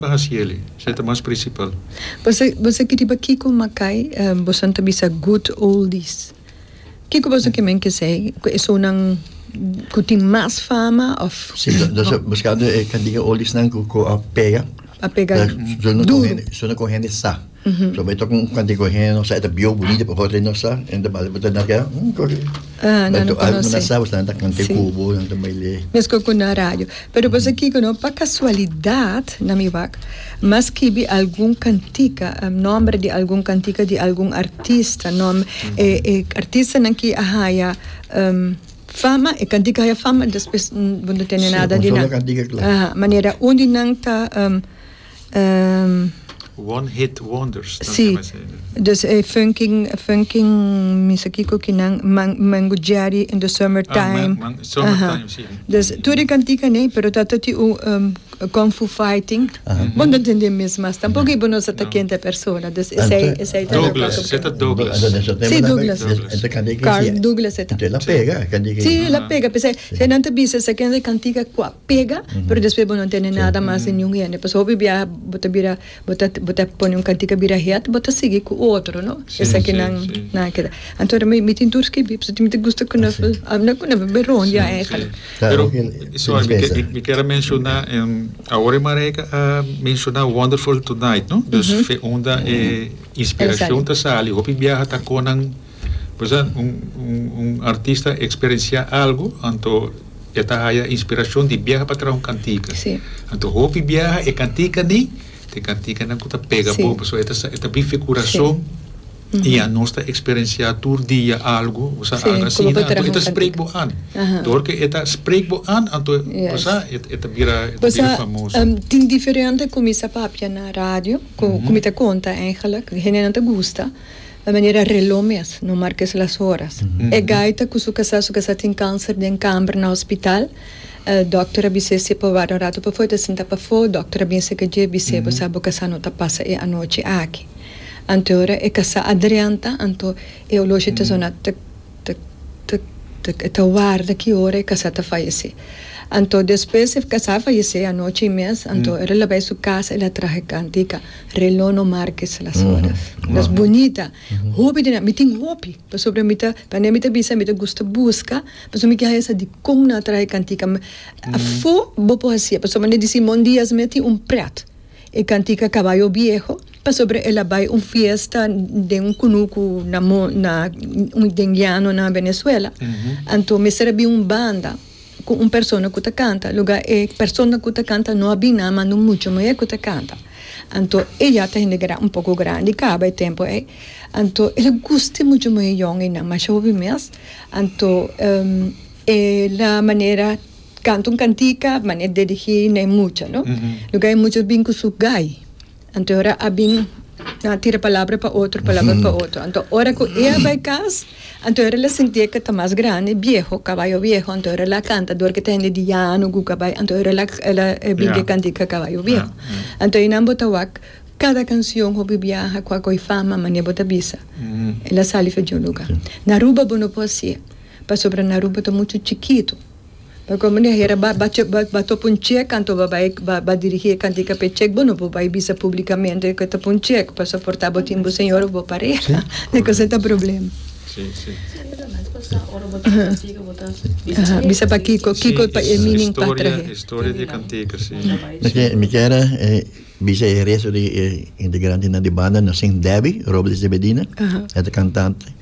Pa hasi eli, se ta mas principal. Boso boso ki riba kiko makai boson ta bisa good oldies kiko boso ki men kesei ku e sounan ku tin mas fama of Si entonces buscando e cantiga oldies nan ku ku a pega a pega duru sounan ku hende sa. So bo e tok un kante ku hende nos sa e ta bieu bunita pasobra e nos sa e ta bali bo ta nada keda hm koke nan a konosi bo nan sa bo sa nan ta kante kubo nan ta baile mesko ku na radio pero bo sa kiko no pa kasualidat na mi wak ma skibi algun kantika nòmber di algun kantika di algun artista e artistanan ki a haya fama e kantika haya fama despues bo no tene nada di nan manera un di nan ta. One hit wonders ta keme así. Sí, dus e funking, funking misa kiko ki nan, man, mango jerry in the summer time. Ah, man, summer time, sí. Aha. Dus tur e kantikan ei, pero ta toti un kung fu fighting. Bo no ta ntende mes mas tampoco y bo no sa ta kende e persona, dus esei, esei ta. Douglas, se ta Douglas. Sí, Douglas. Carl Douglas e ta. Entonces la pega, kende ki. Sí, la pega, p'esei, esei nan ta bisa esei kende kantikan kua. pega pero despues bo no tene nada mas di niun hende pasobra hopi biaha bo ta bira bo ta bo ta pone un kantika bira het bo ta sigui ku otro no esaki nan nan keda anto mi mi tin tur skibi pasobra mi ta gusta ku nèf avena ku nèf a bira rònt ya ègèlèk. Pero suave mi ke mi ke a menshona awor e Marijke a menshona wonderful tonight no dus unda e inspirashon ta sali hopi biaha ta konan Pasobra un un artista experencia algo anto e ta haya inspiracion di biaha pa traha un cantica. Sí. Anto hopi biaha e cantica ni ta e canticanan cu ta pega sí. bobo pasobra e ta sa e ta bin fe curason sí. Uh -huh. y ya nos ta experencia tur dia algo o sa sí. algo asina anto e ta spreek bo an. Uh -huh. Door que e ta spreek bo an anto yes. pasobra e ta bira e ta bira famoso. Um, tin diferente cu mi sa papia na radio cu uh -huh. cu mi ta conta eigenlijk. Hendenan ta gusta Ta manera reló mes, no marka es las horas. E gaita ku su kasá, su kasá tin kanser den kamber na hospital. Dòkter a bis'é si'e pa warda un ratu pafó, e ta sintá pafó. Dòkter a bin serka dje, e bis'é, Bo sa bo kasá no ta pasa e anochi aki. Anto e ora e kasá a drenta, anto e olosha ta zona ta. Tuk, tuk, tuk, e ta warda ki ora e kasá ta fayesé. Anto despues e kasá fayesé anochi i mes, anto e lo laba e su kas, el a traha e kántika Relono Márkez Las Horas. Los bunita, hopi di nan, mi tin hopi, pasobra mi ta, kuan'é mi ta bisa mi ta gusta buska, pasobra mi ke haña sa di kon nan a traha e kántika, afó bo por hasié, pasobra nan a di Simon Díaz mé tin un prèt. E cantica Caballo Viejo pasobra el a bay un fiesta den un cunucu na na den llano na Venezuela. Anto mester a bin un banda cu un persona cu ta canta lugar e persona cu ta canta no a bin nan manda un mucha muher cu ta canta. Anto e ya ta hende un poco grandi caba e tempo ey anto el a gusta e mucha muher yonginan masha hopi mes anto e la manera canta un cantica manera dirigi na e mucha no lugar e mucha bin cu su gai anto ora a bin a tira palabra pa otro palabra pa otro anto ora cu e a bay cas anto ora ela sinti ela ta mas grandi vieho caballo vieho anto ora ela a canta dor cu ta hende di yano cu caballo anto ora ela ela a bin cu e cantica caballo vieho anto enan bo ta wak cada cancion hopi biaha cu a coge fama manera bo ta bisa ela sali for di un lugar na Aruba bo no por haci e pasobra na Aruba ta mucho chikito. Pa kome no e hera ba ba topa un chek anto ba bai ba dirigi e kantika pa e chek bo no por bai bisa publikamente ku e topa un chek pa soporta bo tin bo señor of bo pareha e kos ei ta problema. Bisa pakiko kiko pa e meaning ta trahe. Mi kier bisa e resto di e integrantenan di banda no sin Debbie Robles de Medina e ta kantante.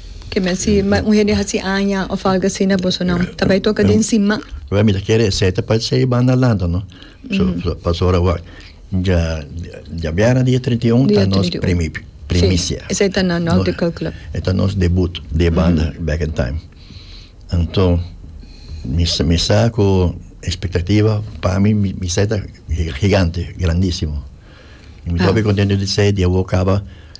Ke men si un hende hasi aña of algo asina boso nan ta bai toka den sima? Wel mi ta kere esei ta parse ei banda lanta no so paso ora wak dja dja biera dia trinta i un ta nos primi primisia esei ta na nos de kalkula ei ta nos debut di e banda back in time anto mi sa mi sa ku espektativa pa mi mi sa ta gigante grandisimo mi ta hopi kontento di sei di awo kaba.